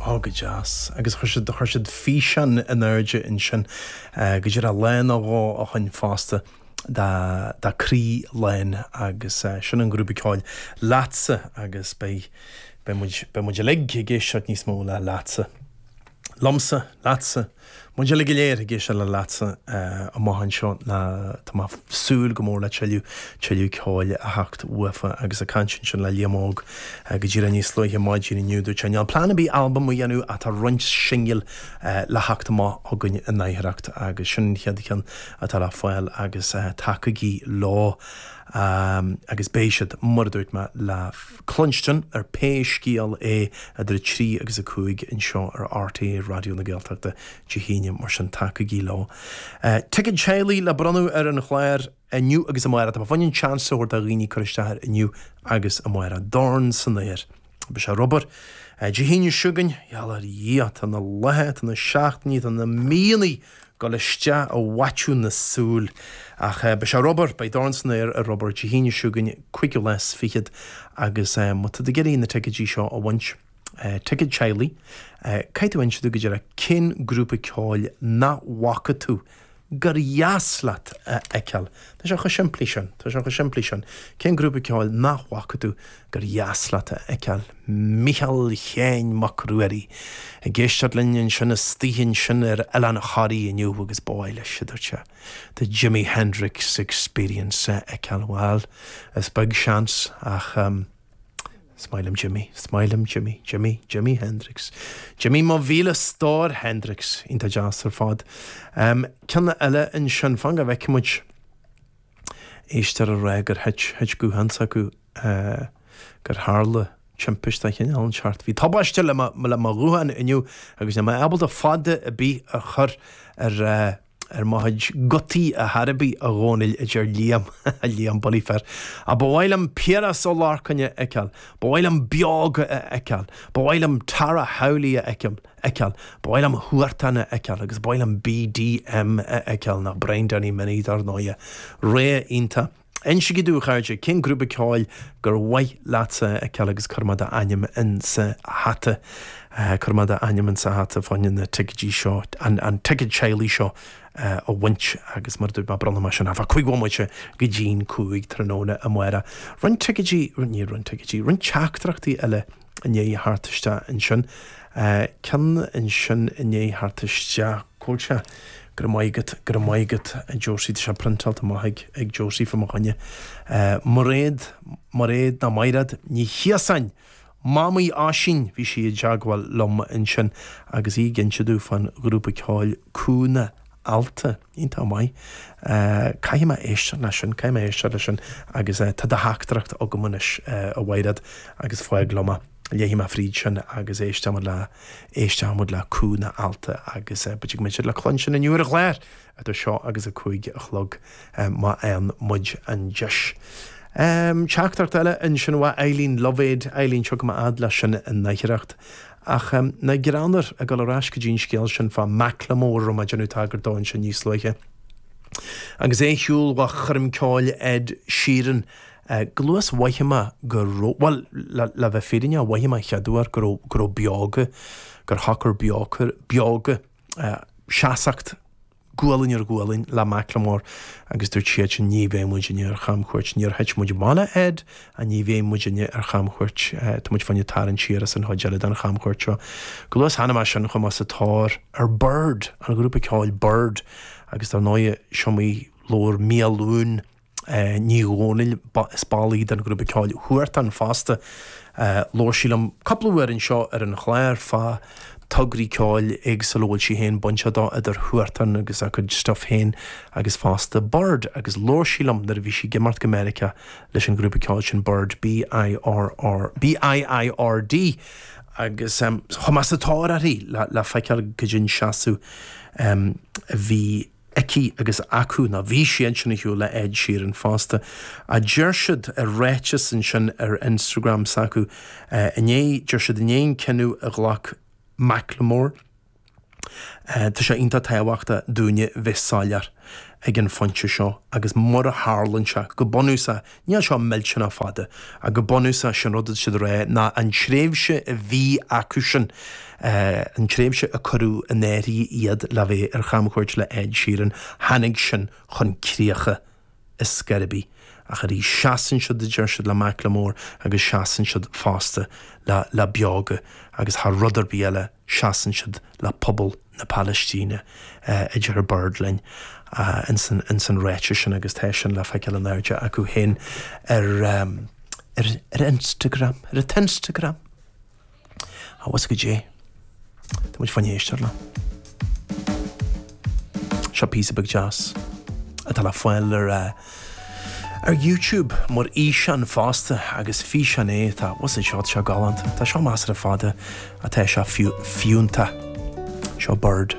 Ó go deas. Agus chuir siad, chuir siad físeán in airde ansin go dtí raibh lá nó dhó ó shin fosta dá, dá croí lán agus sin an grúpa ceoil Leatsa agus beidh, beidh muid, beidh muid uilig ag éisteacht níos mó le Leatsa. Liomsa, leatsa, muid uilig go léir ag éisteacht le Leatsa amach anseo. Tá mé súil go mór le tuilleadh, tuilleadh ceoil a theacht uafa agus a caint ansin le Liam Óg go díreach níos luaithe maidin inniu. Dúirt sé níl plean ar bith albam a dhéanamh ach tá roinnt singil le theacht amach acu in Aibreán agus sin an chéad cheann atá le fáil agus tacaígí leo agus beidh siad, mar a dúirt mé, le. cluinstin ar pé scéal é idir 3 agus 5 anseo ar RTÉ Raidió na Gaeltachta Dé hAoine, mar sin tacaígí leo. Ticéad teaghlaigh le bronnadh ar an chlár inniu agus amárach. Tá muidinne ag iarraidh seans a thabhairt do dhaoine cur isteach air inniu agus amárach. Dorn san aer. Beidh sé ar Ghaoth Dobhair Dé hAoine seo chugainn. Gheall ar Dhia, tá na laetha, tá na seachtainí, tá na míonna dul isteach i bhfaiteadh na súil ach beidh sé ar Ghaoth Dobhair, beidh dorn san aer ar Ghaoth Dobhair Dé hAoine seo chugainn cúigiú lá is fichead agus má tá tú ag iarraidh na ticéidí seo a bhaint, ticéad teaghlaigh, caithfidh tú inse dúinn go díreach cén grúpa ceoil nach bhfaca tú gur dheas leat a fheiceáil. Tá sé chomh simplí sin, tá sé chomh simplí sin. Cén grúpa ceoil nach bhfaca tú gur dheas leat a fheiceáil Micheal Shéin Mac Ruairí ag éisteacht linn ansin istigh ansin ar Oileán Thoraí inniu agus ba mhaith leis, a dúirt sé, the Jimi Hendrix Experience a fheiceáil. Bhuel, is beag seans ach is maith liom Jimi, is maith liom Jimi, Jimi, Jimi Hendrix. Jimi mo mhíle stór, Hendrix iontach deas ar fad. Ceann eile ansin, fan go bhfeicfidh muid. Éisteoir ag rá gur thit, thit guthán s'acu, gur tharla timpist de chineál inteacht. Bhí tubaiste le mo ghuthán inniu agus níl mé ábalta fada ar bith a chur ar mo chuid gutaí dá thairbhe, a Dhónaill, a deir Liam, Liam Bully Fair. Ach ba mhaith liom Piaras Ó Lorcáin a fheiceáil, ba mhaith liom Beoga a fheiceáil, ba mhaith liom Tara Howley a fheiceáil. fheiceáil, ba mhaith liom Huartan a fheiceáil agus ba mhaith liom BDM a fheiceáil, teach Brian Danny Minnie dar ndóighe. Réidh, iontach. Insigí dúinn a chairde cén grúpa ceoil gur mhaith leatsa a fheiceáil agus cuirfidh muid d'ainm insa hata, cuirfidh muid d'ainm insa hata fá choinne na ticéidí seo, an ticéad teaghlaigh seo a bhaint agus mar a dúirt mé bronnfaidh muid sin fá cúig bhomaite go dtí'n cúig tráthnóna amárach. Roinnt ticéidí, ní roinnt ticéidí, roinnt teachtaireachtaí eile. inné thart isteach ansin. Ceann ansin inné thart isteach. Cúilse. Go raibh maith agat. Go raibh maith agat a Josie. Tá sé priontáilte amach ag ag Josie fá mo choinne. Mairéad Mairéad nó Maighréad Ní Chiosáin! Mamaí Oisín! Bhí sí i dteagmháil liom ansin agus í ag inse domh fán ghrúpa ceoil Cúnna Allta. Iontach maith. Caithfidh mé éisteacht leis sin, caithfidh mé éisteacht leis sin agus tá do theachtaireacht agam anois a Mhaighréad agus fág liom é. Léifidh mé fríd sin agus éisteoimid le, éisteoimid le Cúnna Allta agus b'fhéidir go mbeidh siad le cluinstin inniu ar an chlár idir seo agus a cúig a chlog má fhaigheann muid an deis. Teachtaireacht eile ansin ó Eileen Lovéd, Eileen, tiocfaidh mé fhad leis sin in aichearracht Ach nach greannmhar, ag dul ar ais go dtí an scéal sin fá Macklemore a raibh mé ag déanamh tagairt dó ansin níos luaithe. Agus é ar shiúl ó choirm ceoil Ed Sheeran, chomh luath is a mhothaigh mé go raibh, bhuel, le bheith fírinneach, mhothaigh mé an chéad uair go raibh, go raibh Beoga, gur shocair Beoga, seasmhacht, Gualainn ar ghualainn le Macklemore agus dúirt siad sin ní bheidh muidinne ar chamchuairt. Níor thit muid bana fhad a' ní bheidh muidinne ar chamchuairt. Tá muid féin ag tarraingt siar as an chuid eile den chamchuairt seo. Chomh luath is a chonaic mé sin chuaigh mé sa tóir ar Biird, an ghrúpa ceoil Biird, agus dar ndóigh is iomaí uair Miadhachlughain Ní Dhomhnaill, is ball í den ghrúpa ceoil Huartan fosta. Labhair sí liom cúpla uair anseo ar an chlár fá tograí ceoil éagsúla a bhfuil sí féin bainteach dó, idir Huartan agus a cuid stuif féin agus fosta Biird agus labhair sí liom nuair a bhí sí ag imeacht go Meiriceá leis an ghrúpa ceoil sin Biird, B-i-r-r, B-i-i-r-d, agus chuaigh mé sa tóir uirthi le feiceáil goidé an seasamh a bhí. aici agus acu nó bhí siadsan ar shiúl le Ed Sheeran fosta, a deir siad i ráiteas ansin ar Instagram s'acu inné. Deir siad i ndiaidh an cinneadh a ghlac Macklemore, tá sé iontach tábhachtach dúinne bheith soiléir ag an phointe seo agus mar a tharlaíonn sé, go bunúsach Níl seo millteanach fada, ach go bunúsach is é an rud atá siad a rá ná an tréimhse a bhí acu sin, an tréimhse a cuireadh in áirithe iad le bheith ar chamchuairt le Ed Sheeran, tháinig sin chun críche ar scor ar bith. Ach arís, seasann siad, a deir siad, le Macklemore agus seasann siad fosta le Beoga agus thar rud ar bith eile, seasann siad le pobal na Palaistíne, a deir Biird linn, ins an ráiteas sin agus tá sin le feiceáil in airde acu féin ar ar Instagram, ar an Instagram! Abhus go dtí tá muid chun éisteacht leo. Seo píosa beag deas atá le fáil ar. Ar YouTube mar fhíseán fosta agus físeán é tá what's it shot seo galánta. Tá seo measartha fada ach tá sé fiú fiúntach. Seo Bird.